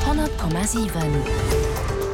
100,7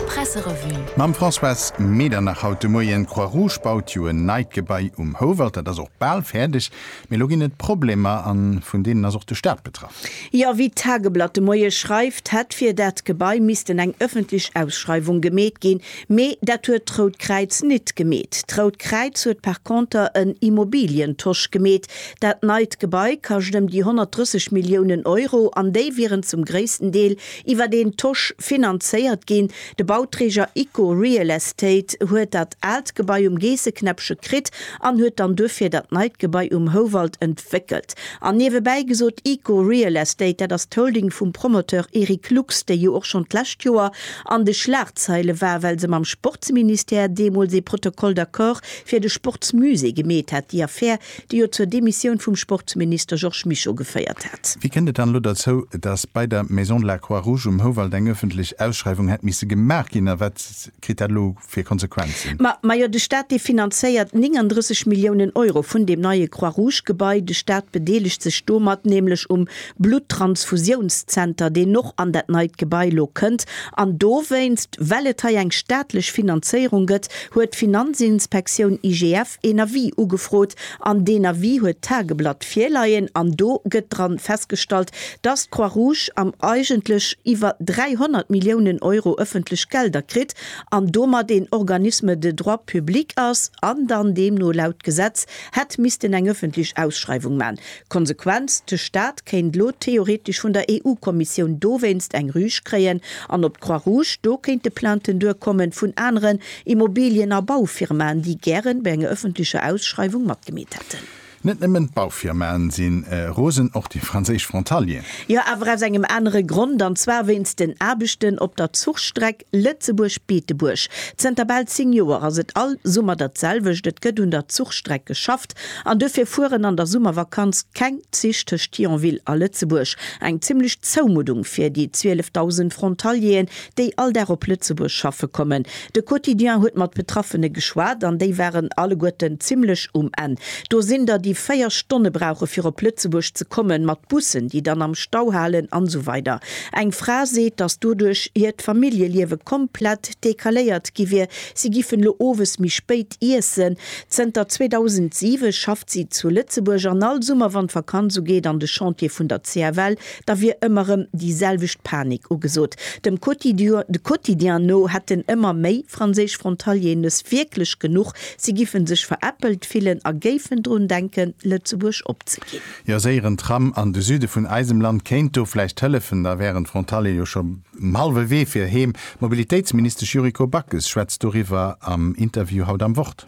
Presserevue. Mam Françoise Medernach haut de Moien. D'Croix-Rouge baut jo en neit Gebai um Houwald. Dat ass och bal fäerdeg. Mee elo ginn et Problemer a vun deenen ass och de Staat betraff. Jo, wéi d'Tageblatt de Moie schreift, hätt fir dat Gebai missten eng ëffentlech Ausschreiwung gemeet ginn. Mee dat huet d'Rout Kräiz nit gemeet. D'Rout Kräiz huet par conter en Immobilientosch gemeet. Dat neit Gebai kascht ëm déi 130 Milliounen Euro an déi wieren zum gréissten Deel iwwer een Tosch finanzéiert ginn. De Bauträger Icco Real Estate huet dat aalt Gebai um Geesseknäppche kritt an huet dann duerfir dat neit Gebai um Houwald entwéckelt. An niewebäi gesot, Icco Real Estate, dat ass d'Holding vum Promoteur Eric Lux, déi jo och schonn d'lescht Joer an de Schlagzeile war, well se mam Sportsministère deemools ee Protocole d'accord fir de Sportsmusée gemeet hat, déi Affär, déi jo zur Demissioun vum Sportsminister Georges Mischo geféiert hat. Wéi kënnt et dann elo derzou, datt bei der Maison de la Croix-Rouge um Houwald eng ëffentlech Ausschreiwung hätt misse gemaach ginn a wat kritt dat elo fir Konsequenzen? Majo, de Staat, dee finanzéiert 39 Milliounen Euro vun deem neie Croix-Rouge-Gebai. De Staat bedeelegt sech domat nämlech um Blutttransfusiounszenter, deen och an dat neit Gebai elo kënnt. An dowéinst, well et hei eng staatlech Finanzéierung gëtt, huet d'Finanzinspektioun IGF een Avis ugefrot. An deen Avis huet d'Tageblatt virleien an do gëtt dra festgestallt, dass d'Croix-Rouge am eigentlech iwwer 300 Milliounen Euro ëffentlech Gelder kritt an domat een Organisme de droit public ass an dann deemno laut Gesetz hätt missten eng ëffentlech Ausschreiwung man Konsequenz, De Staat kéint elo theoretesch vun der EU-Kommissioun dowéinst eng Rüge kréien an op d'Croix Rouge. Do kéinte Plainten duerkommen vun aneren Immobilien a Baufirmaen, déi gären bei enger ëffentlecher Ausschreiwung matgemeet hätten. Net nëmmen d'Baufirmaen si rosen, och déi franséisch Frontalieren. Jo, awer aus engem anere Grond, an zwar wéinst den Aarbechten op der Zuchstreck Lëtzebuerg, Beetebuerg, Zënter bal 10 Joer ass et all Summer dat selwecht, et gëtt un der Zuchstreck geschafft an dofir fueren an der Summervakanz keng Zich tëscht Thionville a Lëtzebuerg. Eng zimmlech Zoumuddung fir déi 12.000 Frontalieren, déi all Dag op Lëtzebuerg schaffe kommen. De Quotidien huet mat Betraffene geschwat an déi waren alleguerten zimmlech um Enn. Do sinn der, déi 4 Stonne brauche fir op Lëtzebuerg ze kommen, mat Bussen, déi dann am Stau halen an esou weider. Eng Fra seet, datt doduerch hiert Familljeliewe komplett dekaléiert gi wier. Si gifen elo owes méi spéit iessen. Zënter 2007 schafft si zu Lëtzebuerg an all Summer, wann d'Vakanz ugeet an de Chantier vun der CFL, da wier ëmmer erëm déi selwecht Panik ugesot. Dem Quotidien no hätten ëmmer méi franséisch Frontalieren es wierklech genuch. Si giffen sech veräppelt fillen a géifen drun denken, Lëtzebuerg opzeginn. Jo séieren Tram an de Süde vun eisem Land kéint do vläicht hëllefen, da wären d'Frontalier jo scho um hallwe Wee fir heem. D'Mobilitéitsministesch Yuriko Backes schwätzt doriwwer am Interview haut am Wort.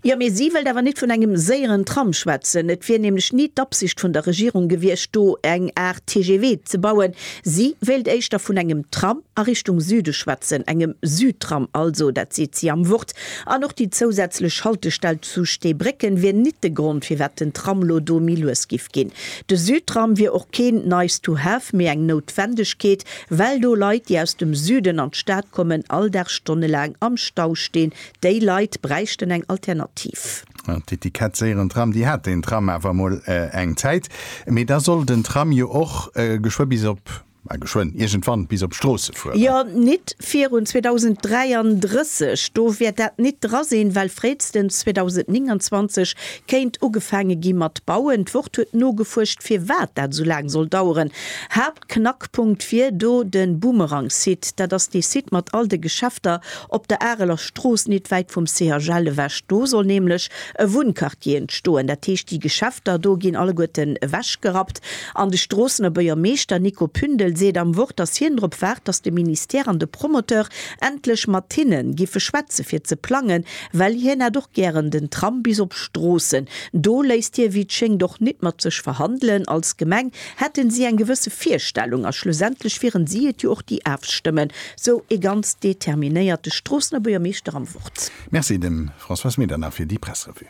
Jo, mee si wëllt awer net vun engem séieren Tram schwätzen. Et wier nämlech ni d'Absicht vun der Regierung gewiescht, do eng Aart TGV ze bauen. Si wéilt éischter vun engem Tram a Richtung Süde schwätzen, engem Südtram also. Dat seet si am Wort. An och déi zousätzlech Haltestell zu Steebrécken wier nit de Grond firwat den Tram lo do méi lues giff ginn. De Südtram wier och keen nice to have mee eng Noutwendegkeet, well do Leit déi aus dem Süden an d'Stad kommen all Dag stonnelaang am Stau stinn. Déi Leit bräichten eng Alternativ. D'Etikett séieren Tram, déi hat den Tram awer mol eng Zäit, mee da soll den Tram jo och geschwë bis op Mä geschwënn iergendwann bis op d'Stroosse fueren. Jo, nit virun 2033, do wäert dat nit dra sinn, well fréistens 2029 kéint ugefaange gi mat bauen. D'Wort huet nogefuerscht, firwat dat esou laang soll daueren. Haaptknackpunkt wier do de Boomerang-Site. Dat ass dee Site mat all de Geschäfter op der Areler Strooss, nit wäit vum CHL ewech. Do soll nämlech e Wunnquartier entstoen. Dat heescht, déi Geschäfter do ginn alleguerten ewechgerappt An de Stroossener Buergermeeschter Nico Pündel seet am Wort, datt hien drop waart, datt de Ministère an de Promoteur endlech mat hinne giffe schwätze fir ze plangen, well hien hätt och gären den Tram bis op Stroossen. Do léisst hie wéi et schéngt och nit mat sech verhandelen. Als Gemeng hätte si eng gewësse Virstellung a schlussendlech wieren si et jo och déi afstëmmen, sou e ganz determinéierte Stroossener Buergermeeschter am Wort. Merci dem Françoise Medernach fir déi Pressrevue.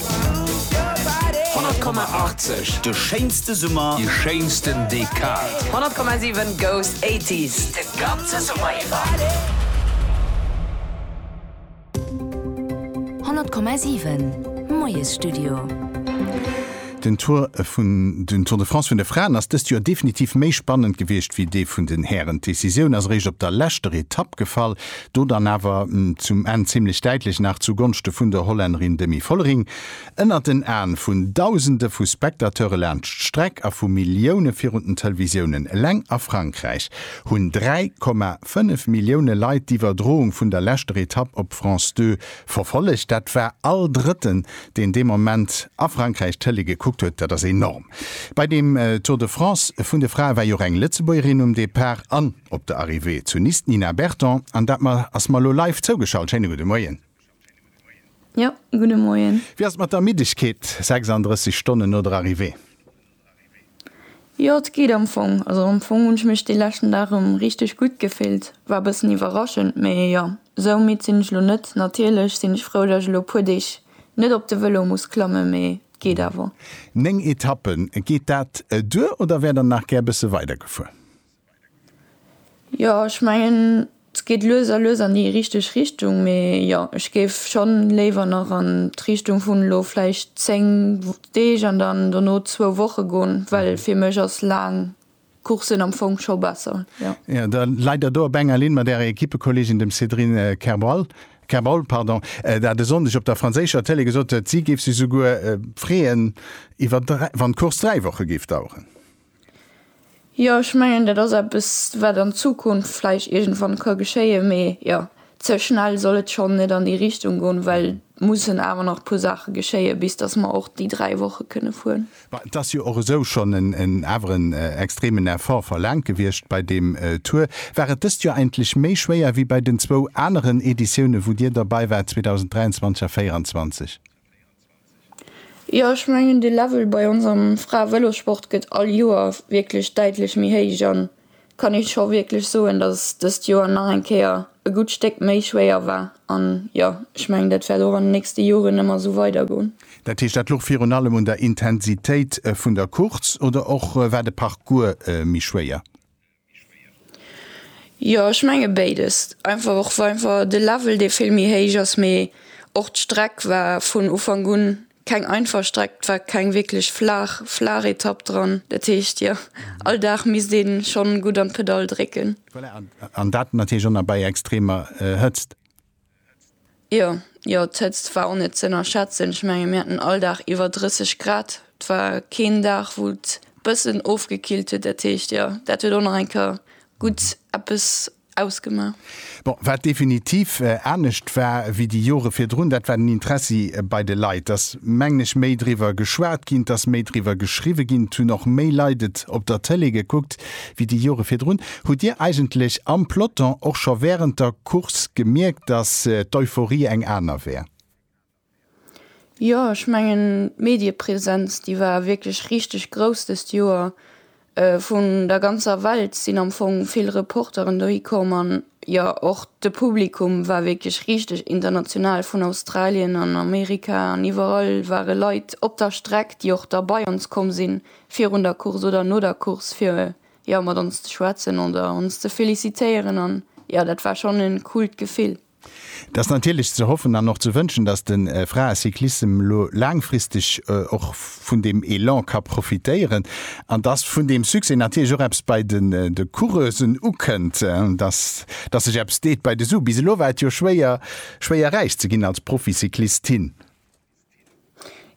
100,80 De schéinste Summer, déi schéinsten Dekad. 100,7 goes 80s de ganze Summer iwwer. 100,7 Moiesstudio. Den Tour de France vun de Fraen ass dëst Joer definitiv méi spannend gewiescht wéi dee vun den Hären. D'Decisioun ass eréischt op der leschter Etapp gefall. Do dann awer zum Enn zimlech däitlech nach zu Gonschte vun der Hollännerin Demi Vollering. Ënnert den Aen vun Dausende vu Spectateure laanscht d'Streck a vu Millioune virun den Televisiounen. Eleng a Frankräich hunn 3,5 Millioune Leit d'Iwwerdroung vun der leschter Etapp op France Deux verfollegt. Dat war all Drëtten, deen dee Moment a Frankräich d'Tëlee gekuckt huet. Dat ass enorm. Bei deem Tour de France vun de Frae war jo och eng Lëtzebuergerin um Depart an. Op der Arrivée zu Nice d'Nina Berton an dat mer ass mer elo live zougeschalt. Schéine gudde Moien. Jo, gudde Moien. Wéi ass et mat der Ermiddegkeet 36 Stonnen no der Arrivée? Jo, et geet am Fong. Also am Fong hunn ech mech dee leschten Dag erëm richteg gutt gefillt. War e bëssen iwwerraschend, mee jo, esou midd sinn ech elo net. Natierlech sinn ech frou, datt ech elo e puer Deeg net op de Vëlo muss klammen, mee et geet awer. Néng Etappen, geet dat duer oder wäert der nach gär e bësse weider gefuer? Jo ech mengen se geet lues a lues an déi richteg Richtung, mee jo ech géif schonn léiwer nach an d'Richtung vun elo vläicht 10 Deeg an dann dono zwou Woche goen, well fir mech ass laang Coursen am Fong scho besser. Jo da leit der do op enger Linn mat ärer Equippekolleegin dem Cédrine Kerbaul, pardon, der hat e Sonndeg op der franséischer Tëlee gesot, si géif sech esouguer freeën iwwer wann d'Course dräi Woche géif daueren. Jo, ech mengen dat ass eppes wat an Zukunft vläicht iergendwann ka geschéien. Mee jo, ze schnell soll et schonn net an déi Richtung goen, well et mussen awer nach e puer Saache geschéien, bis datt mer och déi dräi Woche kënne fueren. Bon, et ass jo och esou schonn en awer en extremen Effort verlaangt gewiescht bei deem Tour. War et dëst Joer eigentlech méi schwéier wéi bei den zwou aneren Editiounen, wou Dir derbäi waart, 2023 a 2024? Jo ech mengen de Level bei ons am Frae-Vëlossport gëtt all Joer wierklech däitlech méi héich an kann ee scho wierklech soen, datt dëst Joer nach eng Kéier e gutt Stéck méi schwéier war. An jo ech mengen dat wäert och an den nächste Joren ëmmer esou weider goen. Dat heescht dat louch virun allem un der Intensitéit vun der Course oder och war de Parcours méi schwéier? Jo ech menge béides einfach och well einfach de Level dee vill méi héich ass mee och d'Streck war vun Ufank un keng einfach Streck et war keng wierklech flaach flaach Etapp dran dat heescht jo all Dag misst ee schonn gutt an d'Pedall drécken. Voilà an dat natierlech och nach bei extremer Hëtzt. Jo, jo, d'Hëtzt war och net z'ënnerschätzen. Ech menge mir haten all Dag iwwer 30 Grad. Et war keen Dag, wou et bëssen ofgekillt huet. Dat heescht, jo, dat huet och nach eng Kéier gutt eppes ausgemaach. Bon, wat definitiv anescht war wéi déi Jore virdrun, dat war den Interessi bei de Leit. Et ass, mengen ech, méi driwwer geschwat ginn, et ass méi driwwer geschriwwe ginn, et hunn och méi Leit et op der Tëlee gekuckt. Wéi déi Jore virdrun, hutt Dir eigentlech am Peloton och scho wärend der Course gemierkt, datt d'Euphorie eng aner wär? Jo, ech mengen d'Mediepresenz, déi war wierklech richteg grouss dëst Joer. Vun der ganzer Welt sinn am Fong vill Reporteren dohi komm an jo, och de Publikum war wierklech richteg international. Vun Australien an Amerika an iwwerall ware Leit op der Streck, déi och da bei ons komm sinn, virun der Course oder no der Course fir jo mat ons ze schwätzen oder ons ze felicitéieren an jo dat war schonn en coolt Gefill. Et ass natierlech ze hoffen an och ze wënschen, dass de Fraecyclissem elo laangfristeg och vun deem Elan ka profitéieren an dass vun deem Succès natierlech och eppes bei de Coureusen ukënnt, dass dass sech eppes deet bei de Sue. Bis elo war et jo schwéier schwéier räich ze ginn als Proficyclistin.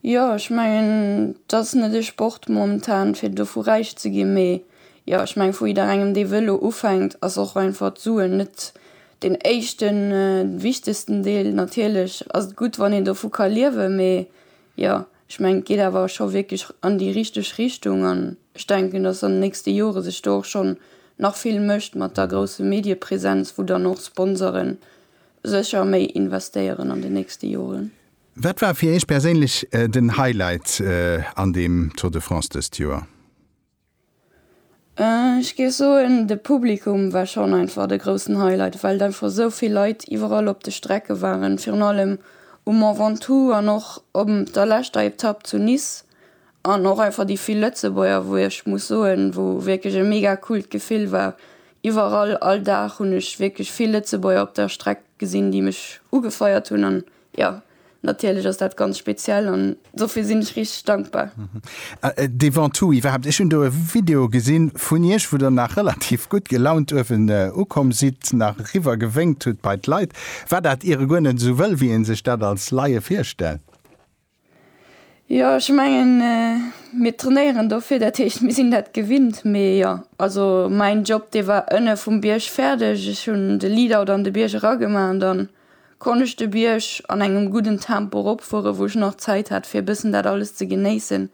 Jo ech mengen dass net ee Sport momentan fir dovu räich ze ginn, mee jo ech meng vu jidderengem dee wëll elo ufänkt ass och einfach d'Suen net den éischten wichtegsten Deel. Natierlech ass et gutt wann een dovu ka liewe mee jo ech meng et geet awer scho wierklech an déi richteg Richtung an ech denken dass an de nächste Jore sech do och schonn nach vill mécht mat der grousse Mediepresenz wou dann och Sponsoren Sécher méi investéieren an den nächste Joren. Wat war fir Iech perséinlech den Highlight an deem Tour de France dëst Joer? Ech géif soen, de Publikum war schonn einfach de groussen Highlight, well einfach esou vill Leit iwwerall op de Strecke waren, virun allem um Mont Ventoux an och op der leschter Etapp zu Nice An och einfach déi vill Lëtzebuerger, wou ech muss soen, wou wierklech e mega coolt Gefill war. Iwwerall, all Dag hunn ech wierklech vill Lëtzebuerger op der Streck gesinn, déi mech ugefeiert hunn. An jo, natierlech ass dat ganz speziell an dofir sinn ech richteg dankbar. Devant tout, iwwerhaapt, ech hunn do e Video gesi vun Iech, wou Der nach relativ gutt gelaunt uewen ukomm sidd, nach eriwwer gewénkt hutt bei d'Leit. War dat iere guer net esou wëll, wéi ee sech dat als Laie virstellt? Jo ech mengen mir trainéieren dofir dat heescht mir sinn dat gewinnt. Mee jo also mäin Job dee war ënne vum Bierg fäerdeg. Ech hunn de Lead-out an de Bierg eragemaach an dann konnt ech de Bierg an engem gudden Tempo eropfuere wou ech nach Zäit hat fir e bëssen dat alles ze genéissen.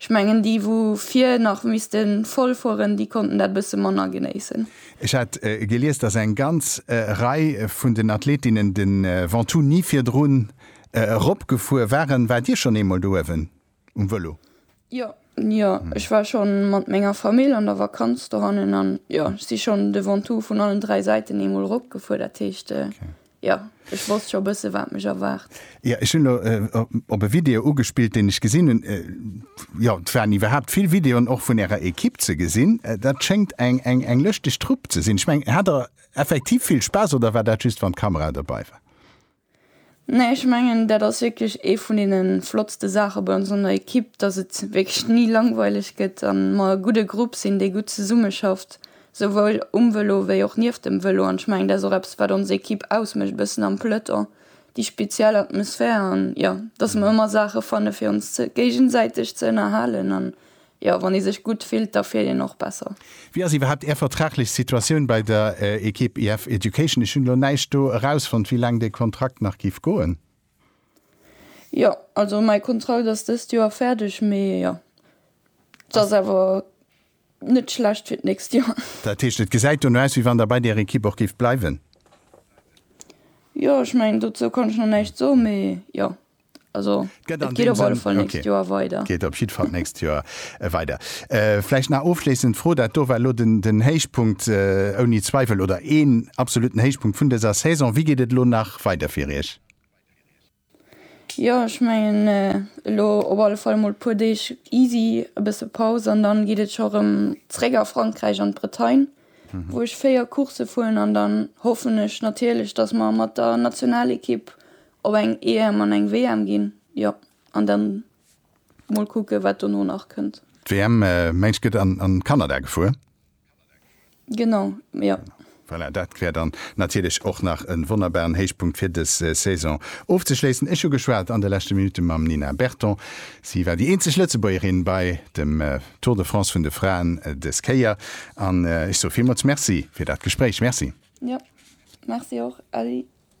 Ech mengen déi wou vir nach misste voll fueren, déi konnten dat e bësse manner genéissen. Ech hat gelies, datt eng ganz Rei vun den Athletinnen de Ventoux ni virdrun Eropgefuer waren. Waart Dir schonn eemol do uewen um Vëlo? Jo, jo, ech war scho mat menger Famill an der Vakanz dohannen an jo, ech si schonn de Ventoux vun allen dräi Säiten eemol eropgefuer. Dat heescht, jo, ech wosst scho e bësse, wat mech erwaart. Jo, ech hunn elo op e Video ugespillt, deen ech gesinn hunn. Jo, et waren iwwerhaapt vill Videoen och vun Ärer Ekipp ze gesinn. Dat schéngt eng lëschteg Trupp ze sinn. Ech mengen, hat Der effektiv vill Spaass oder war dat just, wann d'Kamera dobei war? Nee, ech mengen dat ass wierklech ee vun deene flottste Saache bei ons an der Ekipp, datt et wierklech ni langweileg gëtt a mer e gudde Grupp sinn, dee gutt zesummeschafft, souwuel um Vëlo wéi och nieft dem Vëlo. An ech mengen dat ass och eppes wat ons Ekipp ausmécht e bëssen am Peloton, déi speziell Atmosphär an jo, datt mer ëmmer Saache fanne fir ons géigesäiteg ze ënnerhalen an Jo, wann ee sech gutt fillt, da fiert een och besser. Wéi ass iwwerhaapt Är vertraglech Situatioun bei der Ekipp IF Education? Ech hunn elo näischt do erausfonnt, wéi laang de Kontrakt nach géif goen. Jo, also mäi Kontrakt ass dëst Joer fäerdeg, mee jo, et ass awer net schlecht fir d'nächst Joer. Dat heescht, et gesäit dono aus, wéi wann Der bei där Ekipp och géift bleiwen? Jo, ech mengen, dozou kann ech nach näischt soen, mee jo. Also, et geet op alle Fall d'nächst Joer weider. Geet op jidd Fall d'nächst Joer weider. Vläicht nach ofschléissend Fro, Dat do war elo den Héichpunkt ouni Zweiwel oder een absolutten Héichpunkt vun dëser Saison. Wéi geet et elo nach weider fir Iech? Jo, ech mengen, elo op alle Fall emol e puer Deeg easy, e bësse Paus an dann geet et scho erëm zréck a Frankräich an d'Bretagne, wou ech 4 Coursse fueren an dann hoffen ech natierlech, dass mer mat der Nationalekipp Op eng EM an eng WM ginn, jo. An dann mol kucken, wat dono nach kënnt. D'WM, mengs gëtt an Kanada gefuer? Genau, jo. Voilà, dat wär dann natierlech och nach e wonnerbaren Héichpunkt fir dës Saison ofzeschléissen. Ech hu geschwat an de leschte Minutte mam Nina Berton. Si war déi eenzeg Lëtzebuergerin bei dem Tour de France vun de Fraen dës Kéier. An ech soe villmools Merci fir dat Gespréich. Merci. Jo, Merci och, Elli.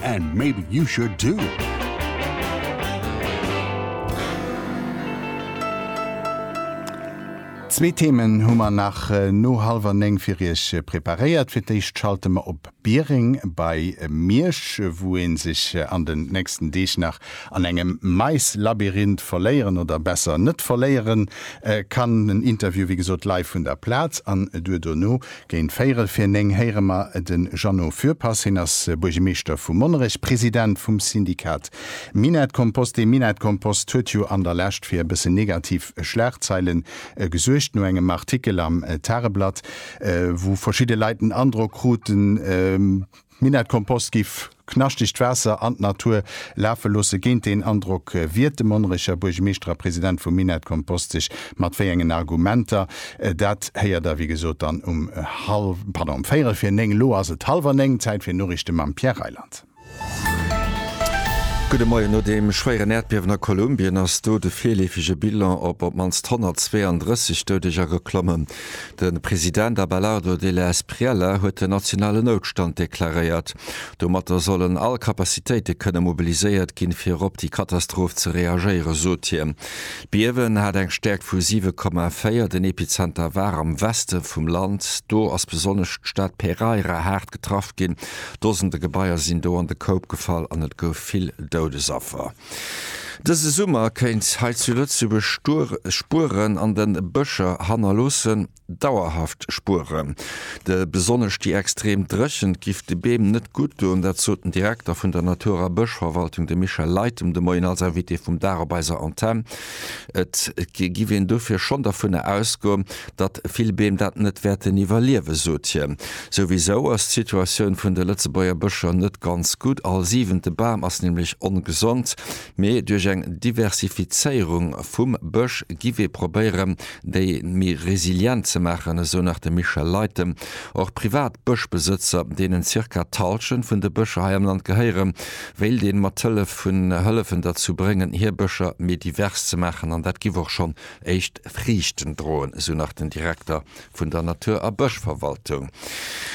And maybe you should too! Zwee Themen hu mer nach no hallwer 9 fir Iech preparéiert. Fir d'éischt schalte mer op Biereng bei Miersch, wou een sech an den nächsten Deeg nach an engem Maislabyrinth verléieren oder besser net verléieren kann. En Interview wéi gesot live vun der Plaz an duer dono Géint véirel vir néng héiere mer de Jeannot Fürpass. Hien ass Buergemeeschter vu Monnerech, President vum Syndikat Minett-Kompost. Dee Minett-Kompost huet jo an der Lescht fir e bëssen negativ Schlagzeile gesuergt, no engem Artikel am Tageblatt, wou verschidde Leit den Androck kruten, D'Minettekompost giff knaschtegt Waasser an d'Natur lafe loosse. Géint deen Androck wiert de Monnerecher Buergemeeschter a President vum Minettekompost sech. Mat wéi engen Argumenter, dat héiert der wéi gesot dann um hallw, pardon, um véierel fir néng. Elo ass et hallwer néng, Zäit fir Noriichte mam Pierre Reyland. Gudde Moien. No deem schwéieren Äerdbiewen a Kolumbien ass do de virleefege Bilan op op d'mannst 132 Doudeger geklommen. De President Abelardo Della Espriella huet den nationalen Noutstand deklaréiert. Domatter sollen all Capacitéite kënne mobiliséiert ginn, fir erop déi Katastroph ze reagéieren, sot hien. D'Biewen hat eng Stäerkt vu 7,4. Den Epizenter war am Weste vum Land. Do ass besonnesch d'Stad Pereira haart getraff ginn. Dosende Gebaier sinn do an de Koup gefall an et gouf vill Doudesaffer. Dëse Summer kéint hei zu Lëtzebuerg Stuer Spueren an de Bëscher hannerloossen, dauerhaft Spueren. De besonnesch déi extrem Dréchent giff de Beem net gutt doen, dat sot den Direkter vun der Natur a Bëschverwaltung, de Michel Leytem, de Moien als Invité vum Dag op eiser Antenn. Et giff een dofir schonn dervunner ausgoen, datt vill Beem dat net wäerten iwwerliewen, sot hien. Souwisou ass d'Situatioun vun de Lëtzebuerger Bëscher net ganz gutt. All siwente Bam ass nämlech ongesond. Mee duerch eng Diversifizéierung vum Bësch giff ee probéieren, déi méi resilient ze maachen, esou nach de Michel Leytem. Och privat Bëschbesëtzer, deenen zirka d'Hallschent vun de Bëscher hei am Land gehéieren, wéilt een mat Hëllef vun Hëllefen derzou bréngen, hir Bëscher méi divers ze maachen. An dat giff och schonn Éischt Friichten droen, esou nach den Direkter vun der Natur a Bëschverwaltung.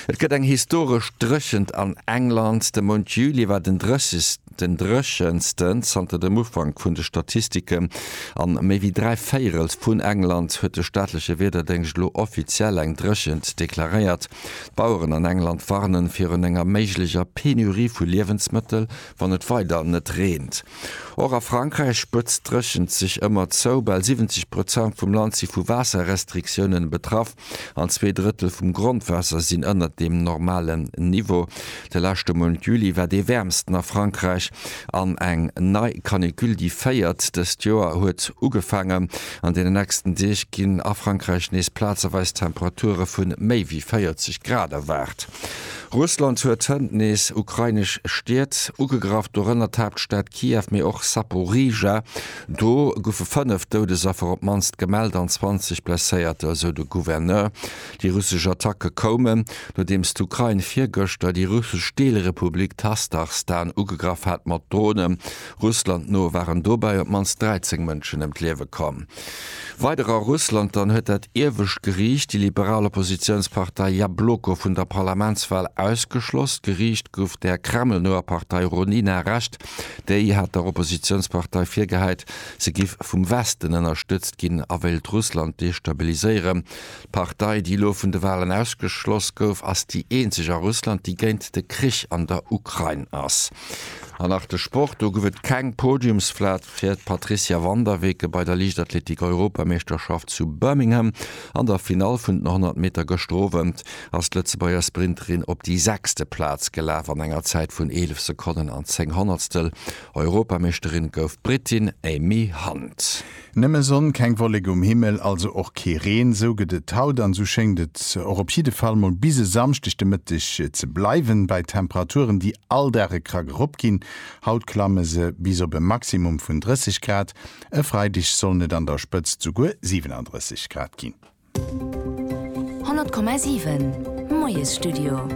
Et gëtt eng historesch Dréchent an England. De Mount Juli war den dréchegsten dréchensten zanter dem Ufank vun de Statistiken. An méi wéi dräi Véirels vun England huet de staatleche Wiederdéngscht elo offiziell eng Dréchent deklaréiert. D'Baueren an England warnen virun enger méiglecher Penurie vu Liewensmëttel, wann et weider net reent. Och a Frankräich spëtzt d'Dréchent sech ëmmer zou. Bal 70 Prozent vum Land si vu Waasserrestriktiounen betraff an zwee Drëttel vum Grondwaasser sinn ënnert dem normalen Niveau. De leschte Mount Juli war dee wäermsten a Frankräich an eng nei Canicule, déi véiert dëst Joer, huet ugefaangen. An deenen nächsten Deeg ginn a Frankräich nees plazeweis Temperature vu méi wéi 40 Grad erwaart. Russland huet hënt nees ukrainesch Stied ugegraff, dorënner d'Haaptstad Kiew, mee och Saporizhzhia. Do goufe fënnef Doudesaffer op d'mannst gemellt an 20 Blesséierter, esou de Gouverneur. Déi russesch Attacke koumen, nodeems d'Ukrain virgëschter déi russesch Deelrepublik Tastachstan ugegraff hat mat Dronen. Russland no waren dobäi op d'mannst 13 Mënschen ëm d'Liewe komm. Weider a Russland, Dann huet dat iewescht Geriicht déi liberal Oppositiounspartei Jabloko vun der Parlamentswal ausgeschloss. D'Geriicht gouf der Kreml-noer Partei Ronina Recht. Déi hat der Oppositiounspartei virgehäit, se giff vum Westen ënnerstëtzt ginn a wéilt Russland destabiliséieren. D'Partei, déi elo vun de Walen ausgeschloss gouf, ass déi eenzeg a Russland, déi géint de Krich an der Ukrain ass. An nach de Sport, Do gouf et keng Podiumsplaz fir d'Patricia Van der Weken bei der Liichtathletik-Europameeschterschaft zu Birmingham. An der Finall vun den 100 Meter gëschter Owend ass d'Lëtzebuerger Sprinterin op déi sechste Plaz gelaf an enger Zäit vun 11 Sekonnen an 10 Honnertstel. Europameeschterin gouf d'Brittin Amy Hunt. Nëmme Sonn, keng Wolleke um Himmel, also och kee Reen. Esou gëtt et haut an esou schéngt et och op jidde Fall mol bis e Samschdeg de Mëtteg ze bleiwen, bei Temperaturen, déi all Dag e Krack erop ginn. Haut klamme se bis op e Maximum vun 30 Grad, e Freideg sollen et an der Spëtzt souguer 37 Grad ginn. 100,7 Moiesstudio.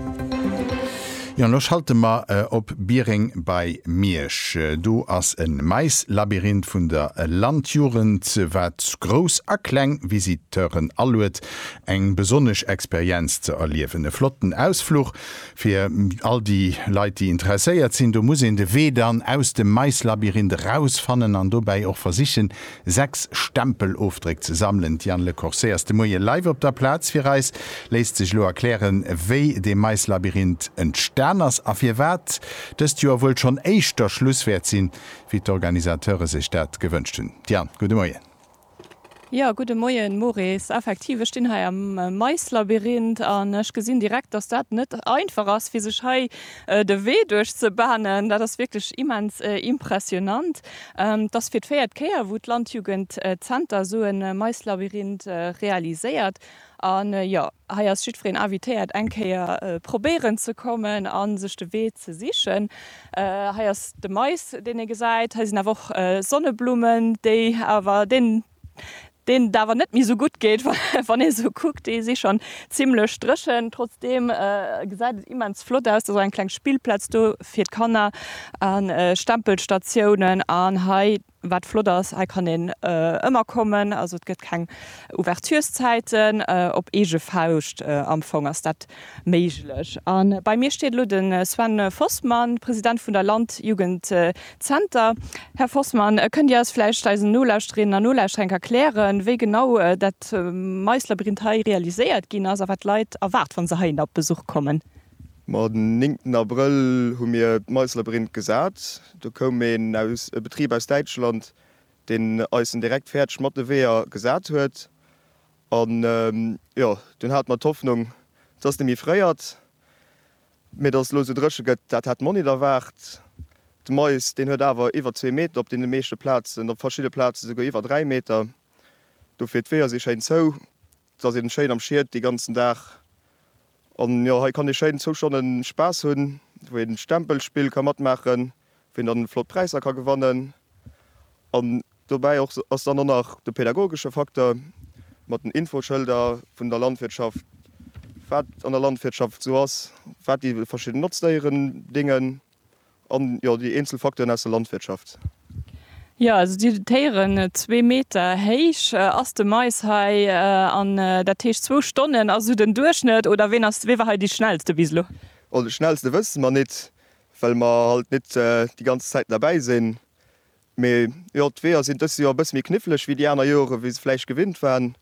Jo an lo schalte mer op Biereng bei Miersch. Do ass e Maislabyrinth vun der Landjugend, wat grouss a kleng Visiteuren aluet, eng besonnesch Experienz ze erliewen. E flotten Ausfluch fir all déi Leit, déi interesséiert sinn. Do muss een de Wee dann aus dem Maislabyrinth erausfannen an dobäi och versichen, 6 Stempelofdréck ze sammelen. D'Diane Lecorset ass de Moie live op der Plaz. Fir eis léisst sech elo erklären, wéi de Maislabyrinth entstan ass a firwat dëst Joer wuel schonn éischter Schluss wäert sinn, wéi d'Organisateure sech dat gewënscht hunn. Diane, gudde Moien. Jo, gudde Moien, Maurice. Effektiv, ech stinn hei am Maislabyrinth an ech gesinn direkt, dass dat net einfach ass, fir sech hei de Wee duerch ze banen. Dat ass wierklech immens impressionant. Et ass fir d'véiert Kéier, wou d'Landjugend Zenter esou e Maislabyrinth realiséiert. An jo, hei ass jiddwereen invitéiert, eng Kéier probéieren ze kommen a sech de Wee ze sichen. Hei ass de Mais, deen ee gesäit. Hei sinn awer och Sonneblummen, déi awer deen. deen et awer net méi esou gutt geet, wann ee se kuckt, déi si schonn zimmlech dréchen. Trotzdeem gesäit et immens flott aus, et ass och eng kleng Spillplaz do fir d'Kanner a Stempelstatiounen. An hei, wat flott ass, hei kann een ëmmer kommen, also et gëtt keng Ouverturszäiten, op eege Fauscht am Fong ass dat méiglech. A bei mir steet elo de Sven Fossmann, President vun der Landjugend Zenter. Här Fossmann, kënnt Dir eis vläicht, eisen Nolauschterinnen an Nolauschterer, enk erklären, wéi genau dat Maislabyrinth hei realiséiert ginn ass a wat d'Leit erwaart, wa se heihinner op Besuch kommen? Ma den néngten Abrëll hu mir d'Maislabyrinth gesat. Do koum een aus, e Betrib aus Däitschland, deen eis en direkt fäerdeg mat de Weeër gesat huet. An, jo, dunn hate mer d'Hoffnung, dass de méi fréi ass. Mee datt et elo esou dréche gëtt, dat hat d'Monique erwaart. De Mais, deen huet awer iwwer zwee Meter, op deene meeschte Plazen, op verschidde Plaze souguer iwwer dräi Meter. Dofir, d'Weeër si schéin zou, et ass een schéin am Schied dee ganzen Dag. An jo, hei kann ee schéin zwou Stonnen Spaass hunn, wou een Stempelspill ka matmaachen. Ween dann flott Präisser ka gewannen an dobäi och ass dann och nach de pädagogesche Facteur mat den Infoschëlder vun der Landwirtschaft, wat an der Landwirtschaft esou ass, wat déi verschidden Notzdéieren déngen an jo déi eenzel Facteuren aus der Landwirtschaft. Jo, also déi dotéieren zwee Meter héich ass de Mais hei an dat heescht zwou Stonnen ass esou den Duerchschnëtt oder ween ass, wee war hei déi schnellste bis elo? Oh, déi schnellste wësse mer nit, well mer halt net déi ganz Zäiten derbäi sinn. Mee jo, d'Weeër sinn dëst Joer e bësse méi kniffleg wéi déi aner Jore wéi se vläicht gewinnt waren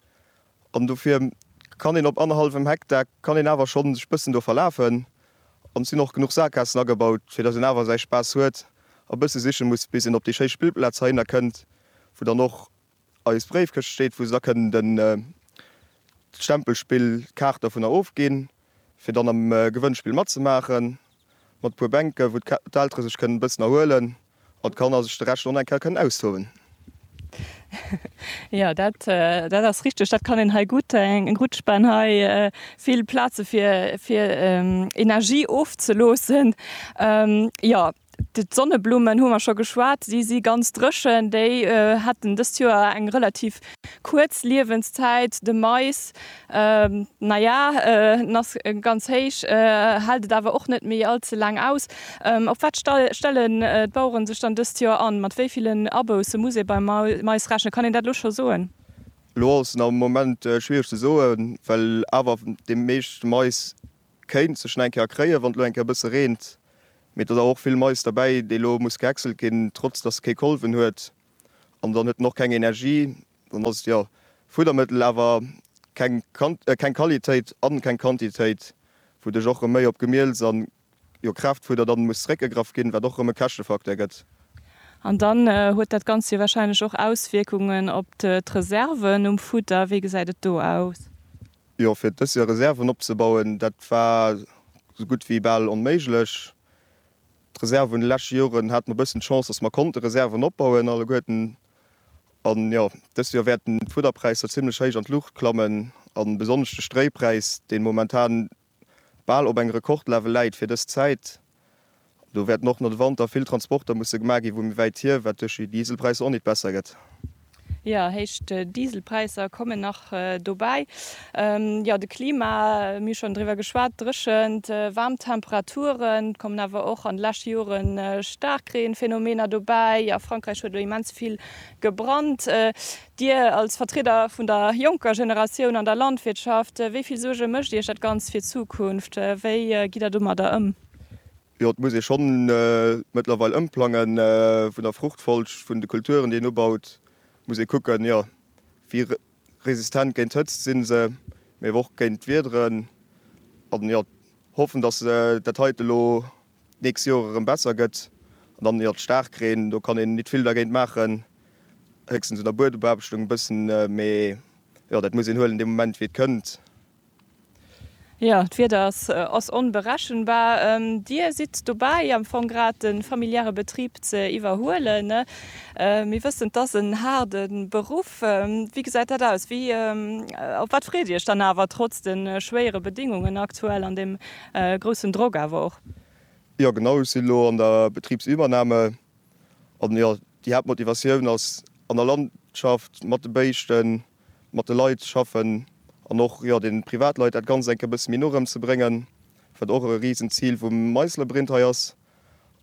an dofir kann een op annerhallwem Hektar kann een awer schonn sech bëssen do verlafen an et sinn och genuch Saakassen agebaut fir dass een awer säi Spaass huet a bësse siche muss bis een op déi schéi Spillplaaz heihinner kënnt wou dann och Eis Bréifkëscht steet, wou se da kënnen den Stempelspill Kaart dovunner ofginn, fir dann am Gewënnspill matzemaachen, mat e puer Bänken, wou d'Eltere sech kënnen e bëssen erhuelen an d'Kanner sech de Rescht dann eng Kéier kënnen austoben. Jo, dat ass richteg. Dat kann een hei gutt, eng gutt Spann hei, vill Plaze fir Energie ofzeloossen. Jo. D'Sonneblummen hu mer scho geschwat, si si ganz dréchen. Déi haten dëst Joer eng relativ kuerz Liewenszäit. De Mais, naja, en ass ganz héich, hält et awer och net méi all ze laang aus. Op wat stellen d'Bauere sech dann dëst Joer an? Mat wéi villen Abousse muss ee beim Mais rechnen? Kann een dat elo scho soen? Elo ass et am Moment schwiereg ze soen, well awer déi meescht Mais Kéint sech nach eng Kéier erkréien, wann et elo eng Kéier e bësse reent. Mee do ass awer och vill Mais derbäi, dee elo muss gehäckselt ginn, trotz datt e kee Kolwen huet. An dann huet en och keng Energie. Dann ass et jo Fuddermëttel, awer keng keng Qualitéit a keng Quantitéit, wouduerch och erëm méi op Gemiels a jo Kraaftfudder dann muss zeréckgegraff ginn, wat och erëm e Käschtefacteur gëtt. An dann huet dat Ganzt jo warscheinlech och Auswierkungen op d'Reserven um Fudder. Wéi gesäit et do aus? Jo, fir dës Joer Reserven opzebauen, dat war sou gutt wéi bal onméiglech. D'Reserve vun de leschte Joren hate mer e bëssen d'Chance, dass mer konnte Reserven opbauen alleguerten. An jo, dës Joer wäerten d'Fudderpräisser zimmlech héich an d'Luucht klammen a besonnesch de Stréipräis, dee momentan bal op engem Rekordlevel läit fir dës Zäit, Do wäerten och no de Wanter vill Transporter musse gemaach ginn, vu méi wäit hier, wat duerch déi Dieselpräisser och nit besser gëtt. Jo, héich Dieselpräisser kommen nach dobäi. Jo, de Klima, mir hu schonn driwwer geschwat, Dréchent, waarm Temperaturen. Et kommen awer och an de leschte Jore Staarkreenphenomener dobäi. A Frankräich huet elo immens vill gebrannt. Dir als Vertrieder vun der jonker Generatioun an der Landwirtschaft, wéi vill Suerge mécht Iech dat Ganzt fir d'Zukunft? Wéi gitt Der domadder ëm? Jo, et muss ee schonn mëttlerweil ëmplangen. Vun der Fruchtfolg vun de Kulturen, déi een ubaut, muss ee kucken, jo, wéi resistent géint d'Hëtzt si se, mee awer och géint d'Wiederen. An jo, hoffen, datt dat heite elo d'nächst Joer erëm besser gëtt. An dann, jo, d'Staarkreen, do kann een nit vill dergéint maachen, héchstens un der Buedebeaarbechtung e bëssen, mee jo, dat muss een huelen dee Moment wéi et kënnt. Jo, d'Wieder ass onberechenbar. Dir sidd dobäi am Fong grad de familiäre Betrib ze iwwerhuelen. Mir wëssen, 't ass en haarde Beruff. Wéi gesäit dat aus? Op wat freet Dir Iech dann awer, trotz de schwéiere Bedéngungen aktuell an dem groussen Drock awer och? Jo genau, ech sinn elo an der Betribsübernahme an jo, déi Haaptmotivatioun ass an der Landschaft mat de Béischten, mat de Leit schaffen an och jo den Privatleit dat Ganzt eng Kéier e bësse méi no erëm ze bréngen, wat och e Risenzil vum Meissler Brint hei ass.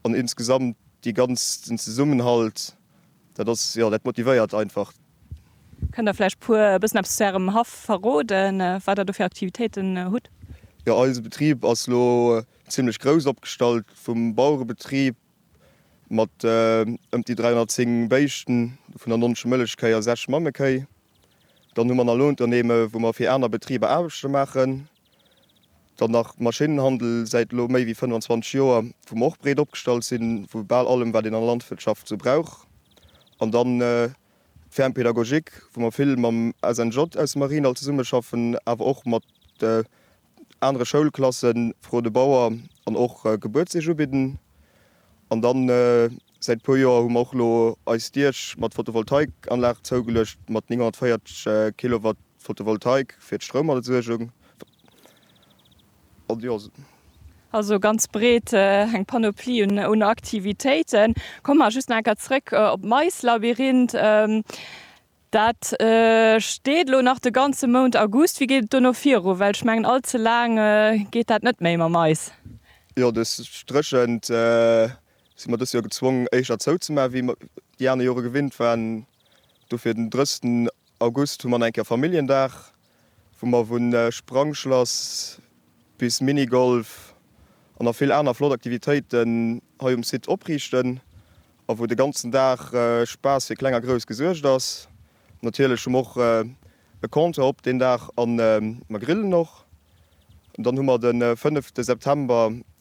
An insgesamt dee ganzen Zesummenhalt, dat ass, jo, dat motivéiert einfach. Kënnt Der vläicht puer e bëssen eppes zu Ärem Haff verroden, wat Der do fir Aktivitéiten hutt? Jo, eise Betrib ass elo zimmlech grouss opgestallt, vum Bauerebetrib mat ëmt déi 310 Béischten, dovunner 90 Mëllechkéi a 6 Mammekéi. Dann hu mer nach Lounternehmen, wou mer fir aner Betriber Aarbechte maachen. Dann nach Maschinnenhandel, säit elo méi wéi 25 Joer, wou mer och breet opgestallt sinn, vu bal allem, wat een an der Landwirtschaft esou brauch. An dann d'Ferme pédagogique, wou mer vill mam SNJ aus dem Mariendall zesummeschaffen, awer och mat anere Schoulklassen, Fro de Bauer, an och Gebuertseesch ubidden. An dann Säit puer Joer hu mer och elo eis Diech mat Photovoltaikanlag zougeluecht, mat 940 Kilowatt Photovoltaik fir d'Stroumerzeugung. Also ganz breet eng Panoplie un Aktivitéiten. Komme mer just nach enker zréck op d'Maislabyrinth. Dat steet elo nach de ganze Mount August. Wéi geet et dono viru? Well ech mengen all ze laang geet dat net méi mam Mais. Jo, dës dréchent Si mer dëst Joer gezwongen éischter zouzemaachen, wéi mer déi aner Jore gewinnt waren. Dofir den 30 August hu mer an eng Kéier Familljendag, wou mer vu Sprangschlass bis Minigolf an nach vill aner flott Aktivitéiten hei um Site opriichten a wou de ganzen Dag Spaass fir Kleng a Grouss gesuergt ass. Natierlech hu mer och e Compteur op deen Dag a mer grillen och. Dann hu mer de 5 September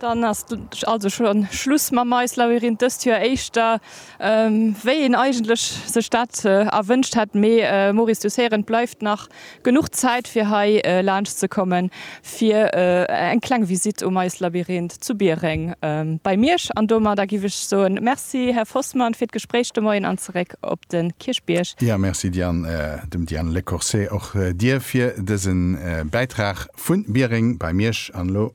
Dann ass also schon Schluss mam Mais Labyrinth dëst Joer, éischter wéi een eigentlech sech dat erwënscht hätt. Mee Maurice, du Seren, et bleift nach genuch Zäit fir hei laanscht ze kommen fir eng kleng Visite um Mais Labyrinth zu Biereng bei Miersch. An domadder giff ech soen, Merci Här Fossmann fir d'Gespréich de Moien an zeréck op de Kierchbierg. Jo, merci Diane, dem Diane Lecourcé och dir fir dësen Bäitrag vun Biereng bei Miersch. An elo